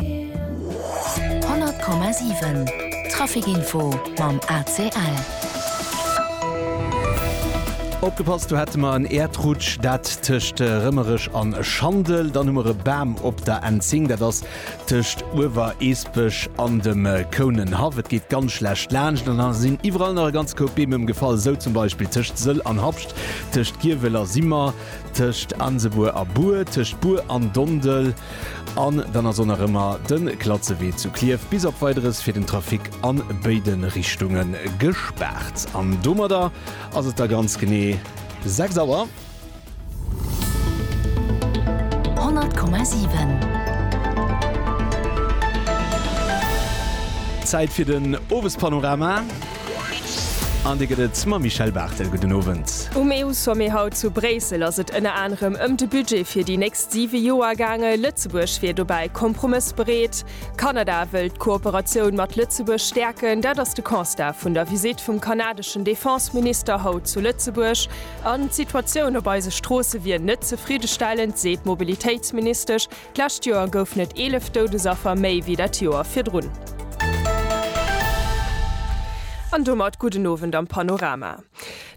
100,7 Traficinfo mam ACL. Opgepasst, do hätte mer en Äerdrutsch, dat tëscht Rëmmereg an Schandel. Dann hu mer e Bam op der N10, dat ass tëscht Uewereesbech an dem Kounenhaff. Et geet ganz schlecht laanscht an da sinn iwwerall nach e ganze Koup Beem ëmgefall, esou zum Beispill tëscht Sëll an Habscht, tëscht Giewel a Simmer, tëscht Ansebuer a Buer, tëscht Buer an Dondel an dann ass och nach ëmmer de Klatzewee zu Klierf bis op Weideres fir den Trafic a béide Richtunge gespaart. An domadder ass et da ganz genee 6 Auer. 100,7. Zäit fir den Owespanorama. An dee gëtt et mam Michèle Barthel. Gudden Owend. Um EU-Sommet haut zu Bréissel ass et ënner anerem ëm de Budget fir déi nächst siwe Joer gaange. Lëtzebuerg wier dobäi kompromëssbereet. Kanada wëll d'Kooperatioun mat Lëtzebuerg stäerken. Dat ass de Constat vun der Visitt vum kanadeschen Defense-Minister haut zu Lëtzebuerg. An d'Situatioun op eise Stroosse wier net zefriddestellend, seet d'Mobilitéitsministesch. D'lescht Joer goufen et 11 Doudesaffer méi wéi dat Joer virdrun. An domat gudden Owend am Panorama.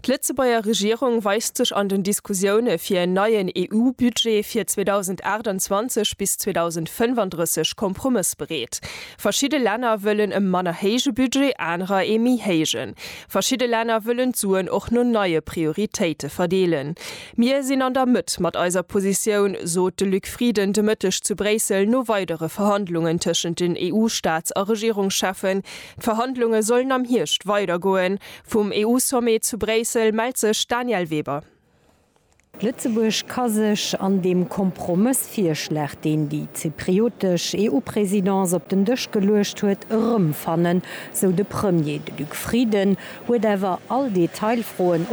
D'Lëtzebuerger Regierung weist sech an den Diskussioune fir en neien EU-Budget fir 2028 bis 2035 kompromëssbereet. Verschidde Länner wëllen e manner héije Budget, anerer ee méi héijen. Verschidde Länner wëllen d'Suen och no neie Prioritéite verdeelen. Mir sinn an der Mëtt mat eiser Positioun, sot de Luc Frieden de Mëtteg zu Bréissel no weidere Verhandlungen tëschent den EU-Staats a Regierungscheffen. D'Verhandlunge sollen am Hierscht weidergoen. Vum EU-Sommet zu Bréissel mellt sech d'Danièle Weber. Lëtzebuerg ka sech an dem Kompromëssvirschlag, deen déi zypriotesch EU-Presidence op den Dësch geluecht huet, erëmfannen, sou de Premier. De Luc Frieden huet awer all Detailfroen